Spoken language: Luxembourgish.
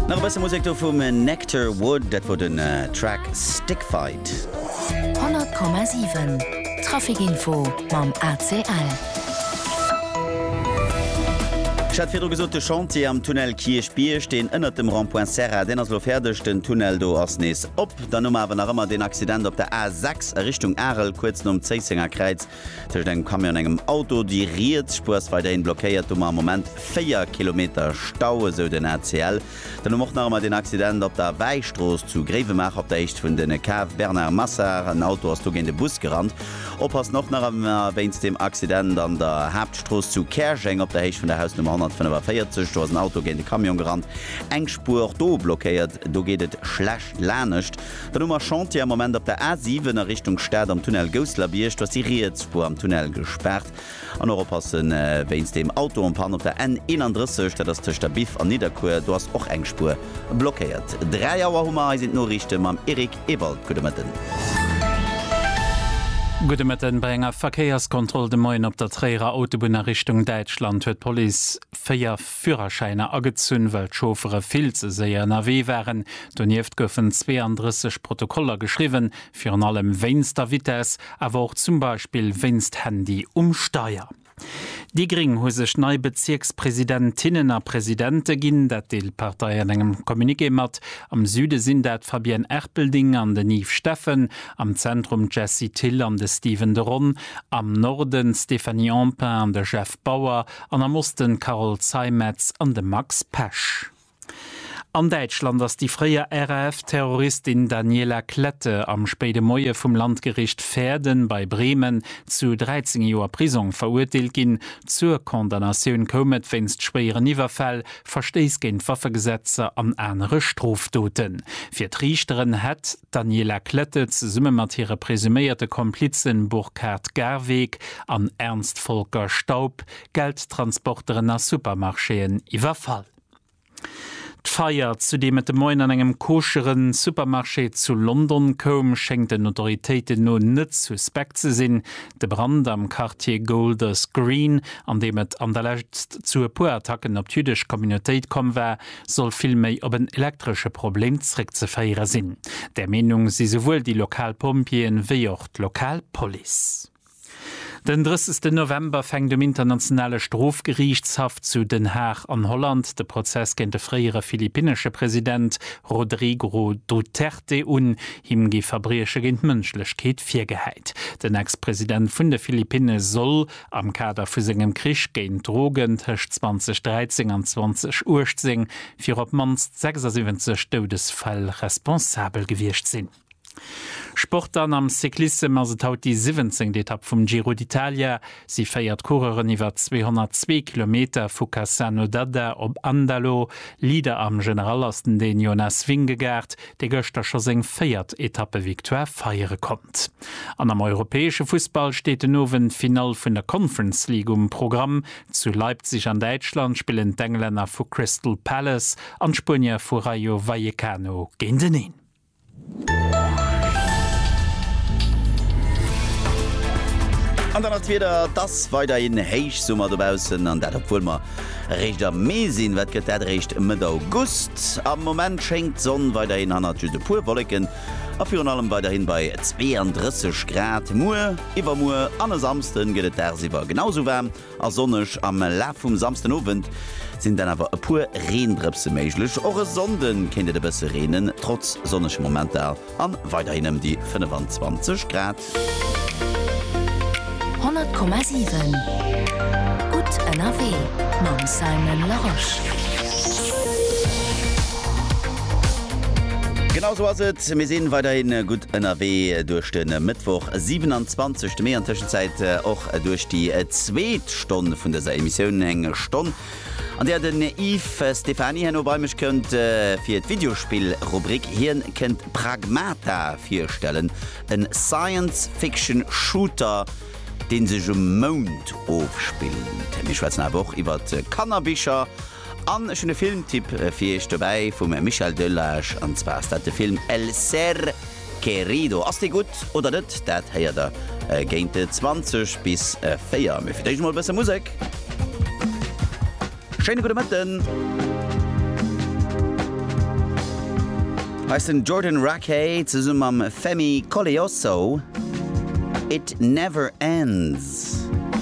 Nach e bësse Musek do vum Nectar Wood, dat wor den Track Stick Fight. 100,7 Trafikinfo mam ACL. Ech hat virdru gesot, de Chantier am Tunnel Kierchbierg, deen ënnert dem Rond-point Serra, deen ass elo fäerdeg. Den Tunnel do ass nees op. Dann hu mer awer nach ëmmer deen Accident op der A6 a Richtung Arel, kuerz nom Zéissenger Kräiz. Tëscht engem Camion an engem Auto, déi riets Spuer ass weiderhin blockéiert, hu mer am Moment 4 Kilometer Stau, esou den ACL. Dann hu mer och nach emmer deen Accident op der Wäistrooss zu Gréiwemaacher op der Héicht vun den Cave Bernard Massard. En Auto ass do géint e Bus gerannt. Oppassen och nach emmer wéinst deem Accident an der Haaptstrooss zu Käerjeng op der Héicht vun der Hausnummer 145. Do ass en Auto géint e Camion gerannt, eng Spuer och do blockéiert, do geet et schlecht lanescht. Dann hu mer Chantier am Moment op der A7 a Richtung Stad am Tunnel Gousselerbiërg. Do ass déi riets Spuer am Tunnel gespaart. An och oppassen wéinst deem Auto en panne op der N31, dat ass tëscht der Biff an Nidderkuer. Do ass och eng Spuer blockéiert. 3 Auer hu mer. Hei sinn d'Noriichte mam Eric Ewald. Gudde Mëtten. Gudde Mëtten. Bei enger Verkéierskontroll de Moien op der Tréierer Autobunn a Richtung Däitschland huet d'Police 4. Führerschäiner agezunn, well d'Chauffere vill ze séier ënnerwee waren. Donieft goufen 32 Protokoller geschriwwen, virun allem wéinst der Vitess, awer och zum Beispill wéinst Handy um Steier. Déi gréng hu sech nei Bezierkspresidentinnen a Presidente ginn, dat deelt d'Partei an engem Communiqué mat. Am Süde sinn dat d'Fabienne Erpelding an den Yves Steffen, am Zentrum d'Jessie Thill an de Steven de Ron, am Norden d'Stéphanie Empain an de Jeff. Bauer an am Osten Carole Zeimetz an de Max Pesch. An Däitschland ass déi fréier RAF-Terroristin Daniela Klette am spéide Moie vum Landgericht Verden bei Bremen zu 13 Joer Prisong verurteelt ginn. Zur Condamnatioun koum et wéinst schwéieren Iwwerfäll, Verstéiss géint d'Waffegesetzer an anere Strofdoten. Fir d'Riichteren hätt d'Daniela Klette zesumme mat hire presuméierte Komplizen Burkhard Garweg, an Ernst Volker Staub Geldtransporteren a Supermarchéen iwwerfall. D'Feier, zu deem et de Moien an engem koschere Supermarché zu London koum, schéngt den Autoritéiten no net suspekt ze sinn. De Brand am Quartier Golders Green, an deem et an der Lescht zu e puer Attacken op d'jüddesch Communautéit komm war, soll vill méi op en elektresche Problem zeréckzeféiere sinn. Där Meenung si souwuel déi lokal Pompjeeën, wéi och d'lokal Police. Den 30 November fänkt um Internationale Strofgeriichtshaff zu Den Haag an Holland de Prozess géint de fréiere philippinnesche President Rodrigo Duterte un. Him gi Verbrieche géint d'Mënschlechkeet virgehäit. Den Ex-President vun de Philippinne soll am Kader vu sengem Krich géint d'Drogen tëscht 2013 an 2018 fir op d'mannst 76 Doudesfäll responsabel gewiescht sinn. Sport dann, Am Cyclissem ass et haut déi siwwenzéngt Etapp vum Giro d'Italia. Si féiert d'Coureuren iwwer 202 Kilometer vu Cassano d'Adda op Andalo. Leader am General ass den Dän Jonas Vingegaard, dee gëschter scho seng véiert Etappe-Victoire feiere konnt. An am europäesche Fussball steet den Owend d'Finall vun der Conference League um Programm. Zu Leipzig an Däitschland spillen d'Englänner vu Crystal Palace an d'Spuenier vu Rayo Vallecano géinteneen. An dann ass d'Wieder, et ass weiderhin Héichsummer dobaussen, an dat obwuel mer eréischt am Mee sinn. Wat gëtt dat eréischt Mëtt August? Am Moment schéngt d'Sonn weiderhin hannert just e puer Wolleken a virun allem weiderhin bei 32 Grad. Muer, iwwermuer an e Samsden gëtt et dagsiwwer genau esou waarm. A sonneg am Laf vum Samsden Owend sinn dann awer e puer Reendrëpse méiglech. Och e Sonnde kéint et e bësse reenen, trotz sonnege Momenter a weiderhin ëm déi 25 Grad. 100,7 Gutt ënnerwee mam Simon Larosche. Genau sou ass et, mir si weiderhin gutt ënnerwee duerch de Mëttwoch, 27 Mee, an Tëschenzäit och. Duerch déi zweet Stonn vun dëser Emissioun, eng Stonn, an där den Yves Stephany herno bei mech kënnt fir d'Videospill-Rubrik. Hien kënnt Pragmata virstellen, e Science-Fiction-Shooter, deen sech um Mound ofspillt. Mir schwätzen awer och iwwert Kannerbicher. An ech hunn e Filmtipp fir iech dobäi vum Michel Delage, an zwar ass dat de Film El ser querido. Ass dee gutt oder net, dat héiert der géint 20 bis 4. Mee fir d'éischt emol e bësse Musek. Schéine gudde Mëtten. Hei ass den Jordan Rakei zesumme mam Femi Koleosso, It Never Ends.